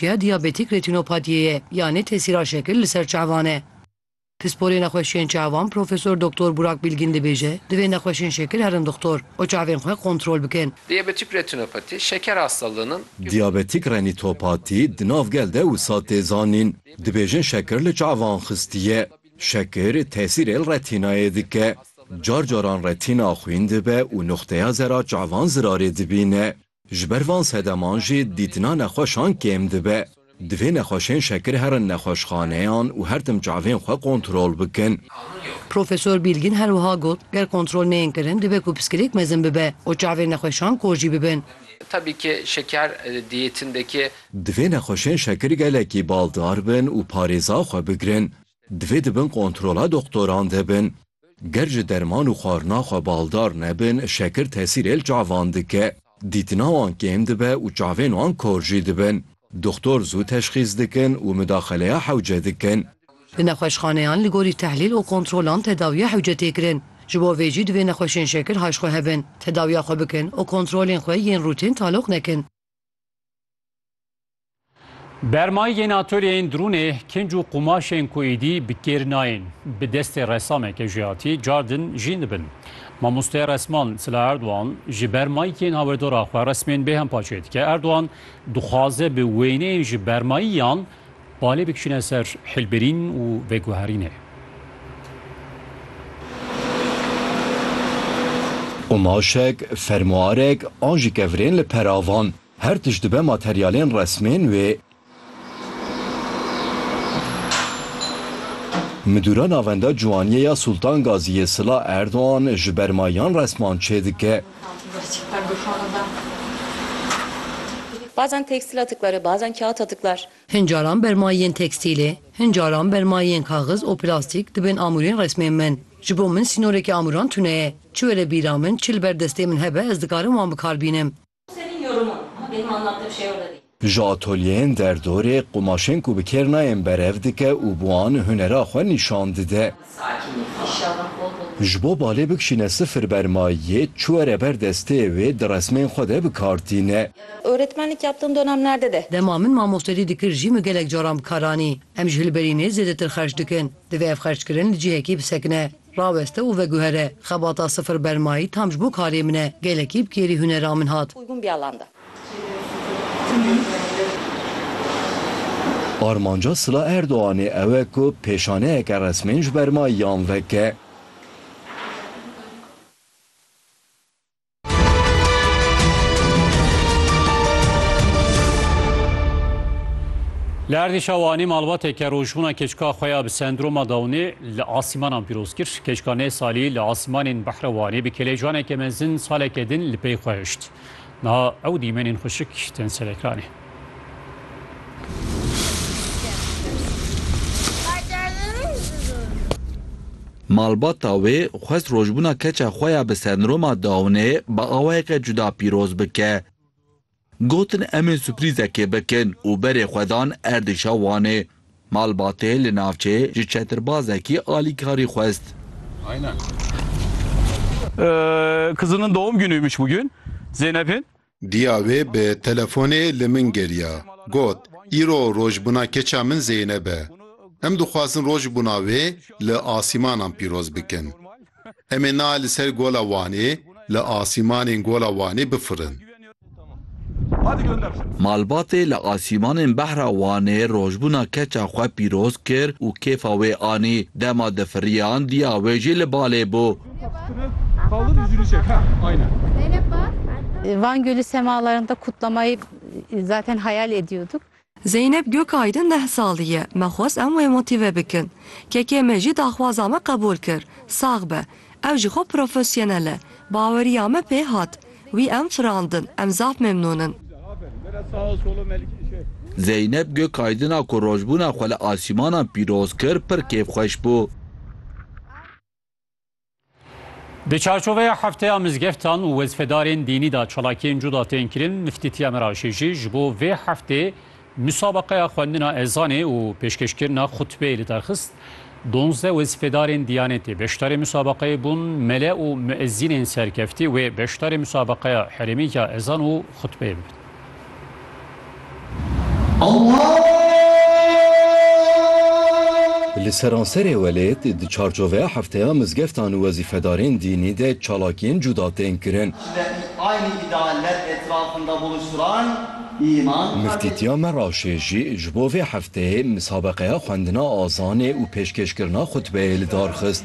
ya diyabetîk retînopatiyê ye yanê tesîra şekil li ser çavan e. Pisporê nexweşiyên çavan Profesor Doktor Burak Bilgin dibêje, divê nexweşên şekil herin dixtor û çavên xwe kontrol bikin. Diyabetîk retînopatî şeker hastalığın in. Diyabetîk renîtopatî di nav gel de wisa tê zanîn. Dibêjin şekir li çavan xistiye. Şekir tesîrê li retînayê dike. Car caran retîna xwîn dibe û nuxteya zera çavan zirarê dibîne. Ji ber van sedeman jî dîtina nexweşan kêm dibe. Divê nexweşên şekir herin nexweşxaneyan û her tim çavên xwe kontrol bikin. Profesor Bîlgin her wiha got, Ger kontrol neyên kirin dibe ku piskirêk mezin bibe û çavên nexweşan kor jî bibin. Tabî ki şeker diyetindeki. Divê nexweşên şekir gelekî baldar bin û parêza xwe bigirin. Divê di bin kontrola doxtoran de bin. Ger ji derman û xwarina xwe baldar nebin, şekir tesîrê li çavan dike. Dîtina wan kêm dibe û çavên wan kor jî dibin. Doxtor zû teşxîs dikin û midaxeleya hewce dikin. Di nexweşxaneyan li gorî tehlîl û kontrolan tedawiya hewce tê kirin. Ji bo vê jî divê nexweşên şekir hay ji xwe hebin, tedawiya xwe bikin û kontrolên xwe yên rûtîn taloq nekin. Bermayîgên atoleyên drûnê, kinc û qumaşên ku êdî bi kêr nayên, bi destê resameke jihatî car din jîn dibin. Mamoste resman Sila Erdogan ji ber mayîkên hawirdora xwe resmên bêhempa çêdike. Erdogan dixwaze bi wêneyên ji bermayî yan Balê bikişîne ser hilbirîn û veguherînê. Qumaşek, fermuarek an jî kevirên li peravan, her tişt dibe materyalên resmên wê. Midûra Navenda Ciwaniyê ya Sultan Gazî yê Sila Erdogan ji berma yan resman çêdike. Bazen tekstil atıkları, bazen kağıt atıklar. Hin caran bermayên tekstîlê, hin caran bermayên kaxiz û plastîk dibên amûrên resmên min. Ji bo min sînorekî amûran tune ye. Çi were bîra min, çi li ber destê min hebe ez dikarim wan bikar bînim. Ji atolyeyên derdorê qumaşên ku bi kêr nayên berev dike û bi wan hunera xwe nîşan dide. Ji bo balê bikişîne sifir bermayiyê çi were ber destê wê di resmên xwe de bi kar tîne. Öğretmenlik yaptığım dönemlerde de. Dema min mamostelî dikir jî min gelek caran bi kar anî. Em ji hilberînê zêdetir xerc dikin. Divê ev xerckirin li cihekî bisekine, raweste û veguhere. Xebata sifir bermayî tam ji bo karê min e. Gelekî bi kêrî hunera min hat. Uygun bir alanda. Armanca Sila Erdoganê ew e ku pêşaneyeke resmên ji ber mayiyan veke. Li erdîşa Wanê malbateke rojbûna keçika xwe ya bi sendroma Downê li asîmanan pîroz kir. Keçika nê salî li asîmanên Behra Wanê bi kelecaneke mezin saleke din li pey xwe hişt. Niha ew dîmenên xuşik tên ser ekranê. Malbata wê xwest rojbûna keça xwe ya bi sendroma Downê bi awayeke cuda pîroz bike. Gotin em ê suprîzekê bikin û berê xwe dan erdêşa Wanê. Malbatê li navçê ji çetirbazekî alîkarî xwest. Kızının doğum günüymüş bugün Zeynep'in. Diya wê bi telefonê li min geriya. Got, Îro rojbûna keça min Zeynep e. Em dixwazin rojbûna wê li asîmanan pîroz bikin. Em ê nal li ser Gola Wanê li asîmanên Gola Wanê bifirin. Malbatê li asîmanên behra Wanê rojbûna keça xwe pîroz kir û kêfa wê anî. Dema difiriyan diya wê jî li balê bû. Van Gölü semalarında kutlamayı zaten hayal ediyorduk. Zeynep Gökaydın deh salî ye, me xwest em wê motîve bikin. Kekê me jî daxwaza me qebûl kir. Sax be. Ew ji xwe profesyonel e. Baweriya me pê hat. Wî em firandin. Em zaf memnûn in. Zeynep Gökaydın'a ku rojbûna xwe li asîmanan pîroz kir pir kêfxweş bû. Di çarçoveya hefteya mizgeftan û wezfedarên dînî da çalakiyên cuda tên kirin, Miftî Tîamir Aşêjî ji bo vê heftê musabeqeya xwendina ezanê û pêşkêşkirina xutbeyê li derxist. Donzdeh wezfedarên Diyanetê beşdarê musabeqeyê bûn, mele û muezînên serkeftî wê beşdarê musabeqeya herêmî ya ezan û xutbeyê bibin. Li seranserê welêt di çarçoveya hefteya mizgeftan û wezîfedarên dînî de çalakiyên cuda tên kirin. Miftîtiya Meraşê jî ji bo vê hefteyê misabeqeya xwendina azanê û pêşkêşkirina xutbeyê li dar xist.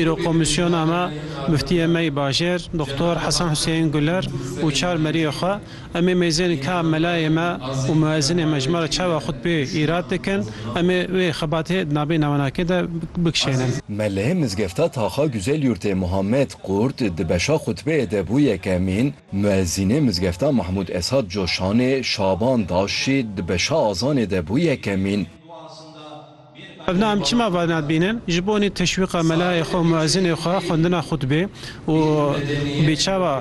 Îro komîsyona me, Muftiyê me yê bajêr Doktor Hesen Huseyîn Guler û çar meriyê xwe, em ê mêzên ka melayê me û muezînê me ji me re çawa xutbeyê îrad dikin, em ê wê xebatê di navê nawenakê de bikişênin. Me li mizgefta Taxa Güzelyurtê Muhammed Qurt di beşa xutbeyê de bû yekemîn, muezînê mizgefta Mahmûd Esad Coşanê Şaban Daşşî di beşa azanê de bû yekemîn, Ev na em çima va nadibînin? Ji bonê teşwîqa melayê xwe û muezînê xwe xwendina xutbê û bê çawa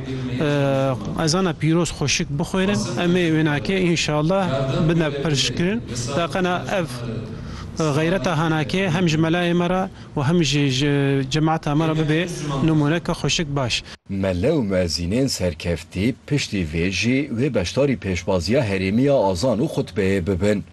ezana pîroz xweşik bixwênin em ê wênakê înşallah bidne piştkirin. Taqena ev xeyreta hanakê hem ji melayê me re û hem jî ji cemata me re bibe nimûneke xweşik baş. Mele û muezînên serkeftî piştî vê jî wê beşdarî pêşbaziya herêmiya azan û xutbeyê bibin.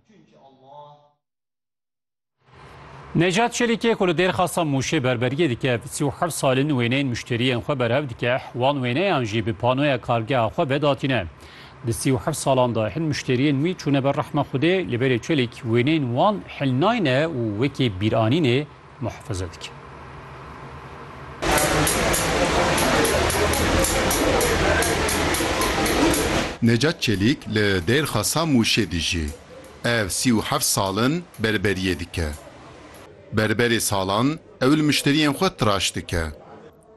Necat Çelikê ku li Dêrxasa Mûşê berberiyê dike, bi sî û heft salin wêneyên muşteriyên xwe berhev dike, wan wêneyan jî bi panoya kargeha xwe vedatîne. Di sî û heft salan de hin muşteriyên wî çûne ber rehma Xwedê, lê berê Çelîk wêneyên wan hilnayne û wekî bîranînê muhafaza dike. Necat Çelîk li Dêrxasa Mûşê dijî. Ev sî û heft sal in berberiyê dike. Berberê salan ew li mişteriyên xwe tiraş dike.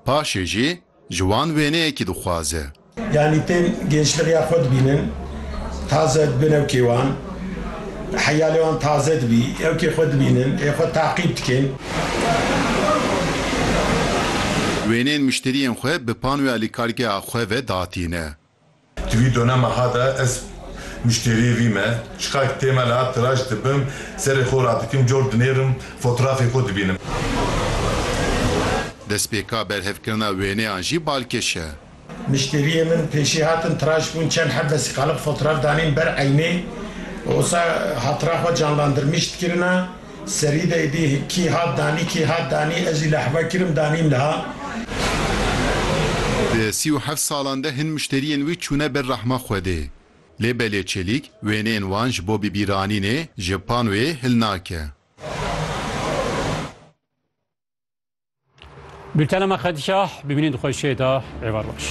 Paşê jî Ji wan wêneyekî dixwaze. Yanî tên gençlixê ya xwe dibînin, taze dibin ew kê wan, heyalê wan taze dibî, ew kê xwe dibînin, ê xwe taqîb dikin. Wêneyên mişteriyên xwe bi panoya li kargeha xwe ve datîne. Di vî dona meha de ez muşteriyê vî me. Çiqar ki tê me la tiraş dibim, serê xwe radikim, cor dinêrim, fotrafê xwe dibînim. Destpêka berhevkirina wêneyan jî balkêş e. Muşteriyê min pêşî hatin, tiraş bûn, çend heb vesîqalib fotraf danîn ber eynê û wisa hatira xwe canlandirmîş dikirina. Serî de êdî kî hat danî kî hat danî ez jî li heva kirim danîm niha. Di sî û heft salan de hin muşteriyên wî çûne ber rehma Xwedê. Lê belê Çelîk wêneyên wan ji bo bibîranînê ji panoyê hil nake. Bültena me qedîya bimînin di xwe jê de êvar baş.